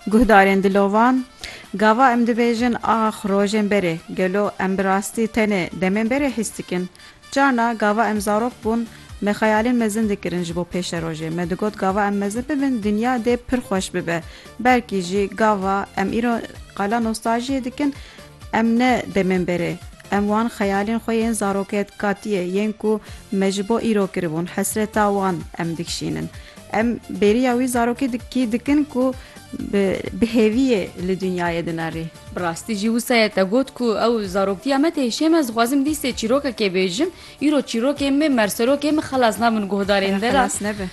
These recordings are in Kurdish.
Guhdarên dilovan, Gava em dibêjin ax rojên berê, gelo em bi rastî tenê demên berê hîs dikin? Carna gava em zarok bûn, me xeyalên mezin dikirin ji bo pêşerojê. Me digot gava em mezin bibin dinya dê pir xweş bibe. Belkî jî gava em îro qala nostaljiyê dikin, Em ne dê bên berê. Em wan xeyalên xwe yên zaroketkatiyê yên ku me ji bo îro kiribûn, hesreta wan em dikişînin. Em bêriya wî zarokê dikî dikin ku bi bi hêviyê li dinyayê dinerî. Bi rastî jî wisa ye te got ku ew zaroktîya me tê hişê me, zixwazim dîsê çîrokekê bêjim, îro çîrokên me, merserokên me xelas nabin guhdarên Ere de ra. xelas nebe.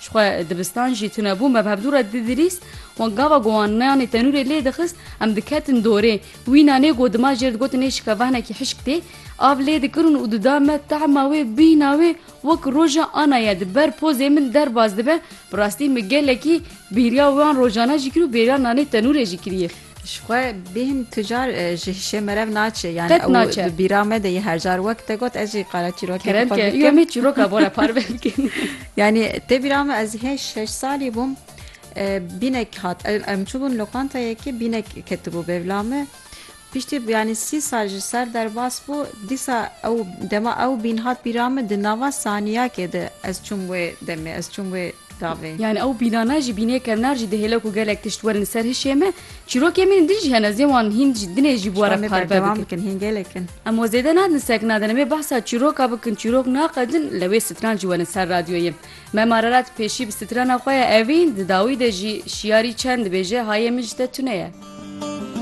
Jixwe dibistan jî tune bû me bi hevdû re didrîst wan gava ku wan meyanê tenûrê lê dixist em diketin dorê wîna nê ku dima jê re digotin nê şike vehnekî hişk tê av lê dikirin û dida me tahma wê bîna wê wek roja ana ye di ber pozê min derbas dibe bi rastî min gelekî bêriya wan rojana jî kir û bêriya nanê tenûrê jî kiriye. Ji xwe bêhn tu car ji hişê merev naçê yani Qet ew naçe. di bîra me de yê her car wek te got ez jî qala çîrokê Kerem xwe ke yo bikim. me çîroka bora parve bikin. Yani tê bîra me ez hêj şeş salî bûm e, bînek hat em em çûbûn lokantayekê bînek ketibû bêvla me. Piştî yani sî sal ji ser derbas bû dîsa ew dema ew bîn hat bîra me di nava saniyakê de ez çûm wê demê ez çûm wê Tavê. Yani ew pîlana jî bînê kevnar jî dihêle ku gelek tişt werin ser hişê me. Çîrokên me din jî hene zê wan hîn jî dinê jî bû re parve bikin. Hîn gelek in. Em we zêde nadin sek nadin em ê behsa çîroka bikin çîrok naqedin li wê stran jî werin ser radyoyê. Mem Ararat pêşî bi strana xwe ya evîn di dawî de jî şiyarî çend dibêje hayê min ji te tune ye.